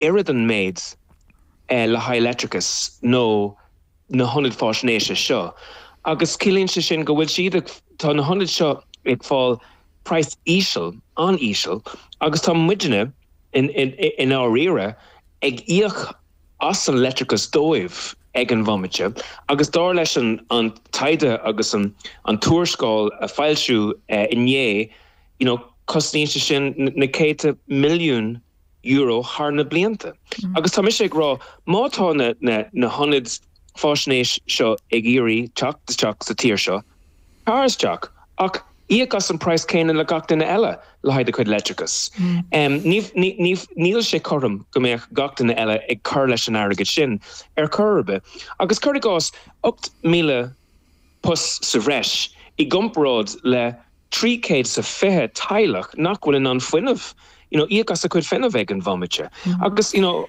oiread an méid le haghaidh leictreachais nó na hionaid faisnéise seo agus ciallaíonn sé sin go bhfuil siad ag, tá na hionaid seo ag fáil price íseal, an-íseal agus tá muidne i ndáiríre ag íoc as an leictreachas dóibh ag an bhomaite agus dar leis an taighde agus an tuarascáil a foilsíodh inné you know cosnaíonn sé sin na céadta milliún euro thar na blianta. Agus tá mise ag rá, má tá na hionaid faisnéis seo ag iarraidh teacht isteach sa tír seo, tar isteach, ach íoc as an price céanna le gach duine eile le haghaidh a chuid leictreachais. Níl, níl sé cothrom go mbeadh gach duine eile ag cur leis an airgead sin ar chor ar bith. Agus cur i gcás, 8,000 post sa bhreis i gcomparáid le. trí céad 's a fiche teaghlach nach bhfuil in ann fuinneamh, you know íoc as a cuid fuinnimh ag an bhomaite. Agus you know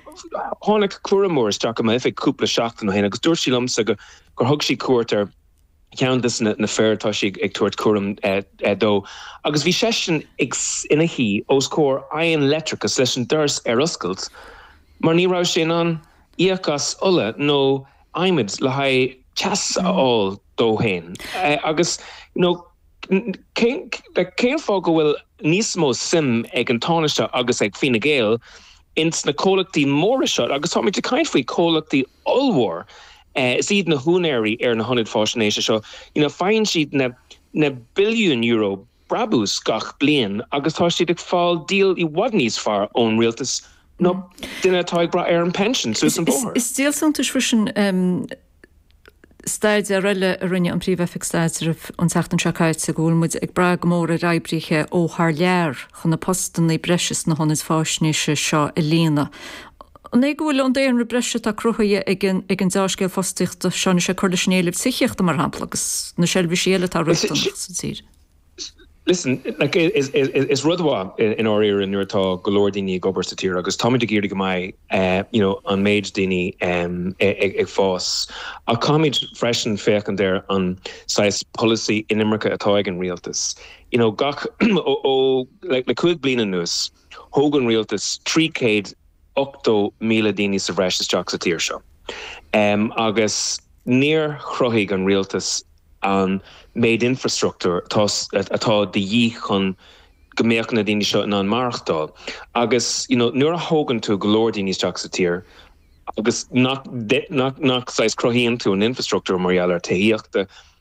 tháinig cúramóir isteach i m'oifig cúpla seachtain ó shin agus dúirt sí liomsa gur thug sí cuairt ar cheann de na fir atá sí ag tabhairt cúram dó agus bhí seisean ag ina shuí os comhair oigheann leictreachais leis an doras ar oscailt mar ní raibh sé in ann íoc as ola nó adhmaid le haghaidh teas a fháil dó féin. Agus you know. Cén fáth go bhfuil níos mó suim ag an Tánaiste agus ag Fine Gael ins na comhlachtaí móra seo, agus táimid ag caint faoi comhlachtaí ollmhór, is iad na húinéirí ar na hionaid faisnéise seo, you know, faigheann siad na billiúin euro brabús gach bliain agus tá siad ag fáil deal i bhfad níos fearr ón rialtas ná duine atá ag brath ar an pension suas an bóthar. Is díol suntais freisin. staidéar eile a rinne an Príomh-Oifig Staidrimh an tseachtain seo caite go bhfuil muid ag brath go mór ar oibrithe ó thar lear chun na postanna breise sna hionaid faisnéise seo a líonadh. An é go bhfuil an daonra breise atá cruthaithe ag an deá-scéal fostaíochta seo anois ag cur leis an éileamh tithíochta, mar shampla, agus na seirbhísí eile atá riachtanach sa tír? Listen, like, is rud mhaith i ndáiríre nuair atá go leor daoine ag obair sa tír agus táimid ag iarraidh go mbeidh you know an méid daoine ag fás ach caithfimid freisin féachaint ar an saghas polasaí inimirce atá ag an rialtas. You know gach ó le cúig bliain anuas, Thóg an rialtas 380,000 daoine sa bhreis isteach sa tír seo agus níor chruthaigh an rialtas an méid infreastruchtúir atá de dhíth chun go mbeadh na daoine seo in ann maireachtáil. Agus you know nuair a thógann tú go leor daoine isteach sa tír agus nach, nach saghas cruthaíonn tú an infreastruchtúr mar gheall ar tithíochta,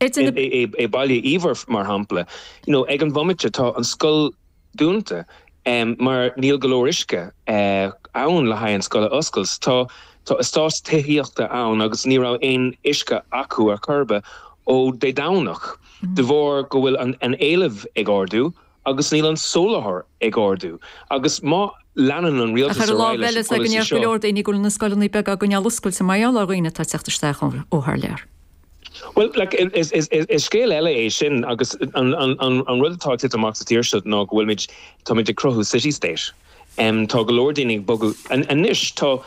I Baile Íomhair, mar shampla, you know, ag an bhomaite tá an scoil dúnta mar níl go leor uisce ann le haghaidh an scoil a oscailt. Tá tá eastáit tithíochta ann agus ní raibh aon uisce acu ar chor ar bith ó Dé Domhnach, de bharr go bhfuil an éileamh ag ardú agus níl an soláthar ag ardú agus má leanann an rialtas ar aghaidh leis an polasaí seo. Ach ar an lámh eile, is ea go ndéarfadh go leor daoine go bhfuil na scoileanna beaga á gcoinneáil oscailte mar gheall ar dhaoine atá ag teacht isteach ó thar lear. Bhuel, is scéal eile é sin agus an rud atá ag titim amach sa tír seo ná go bhfuilimid, táimid ag cruthú city state. Tá go leor daoine ag bogadh, anois tá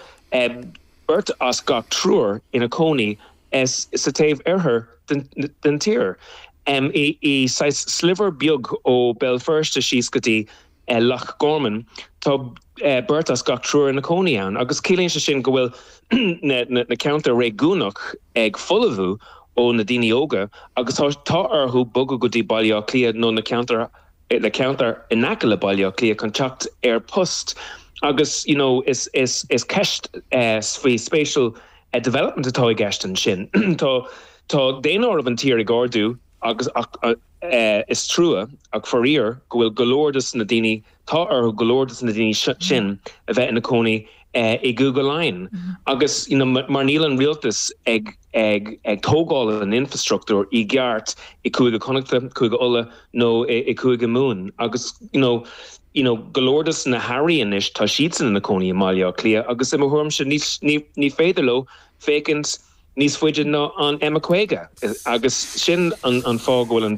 beirt as gach triúr ina cónaí S, Sa taobh oirthear den tír. I saghas sliver beag ó Béal Feirste síos go dtí Loch Garman. Tá beirt as gach triúr ina cónaí ann agus ciallaíonn sé sin go bhfuil na ceantair réigiúnach ag folamhú ó na daoine óga agus tá orthu bogadh go dtí Baile Átha Cliath nó na ceantair le ceantar in aice le Baile Átha Cliath chun teacht ar post agus you know is is is ceist faoi spatial development atá i gceist ansin tá tá daonáireamh an tír ag ardú agus ach is trua ach faraor go bhfuil go leor dos na daoine tá orthu go leor dos na daoine sin a bheith ina cónaí i gCúige Laighean agus you know mar níl an rialtas ag ag tógáil an infreastruchtúir i gceart i gCúige Chonnachta, Cúige Uladh nó i gCúige Mumhan agus you know go leor dos na hAirí anois tá siadsan ina cónaí i mBaile Átha Cliath agus i mo thuairimse ní féidir leo féachaint níos faide ná an M50 agus sin an fáth go bhfuil an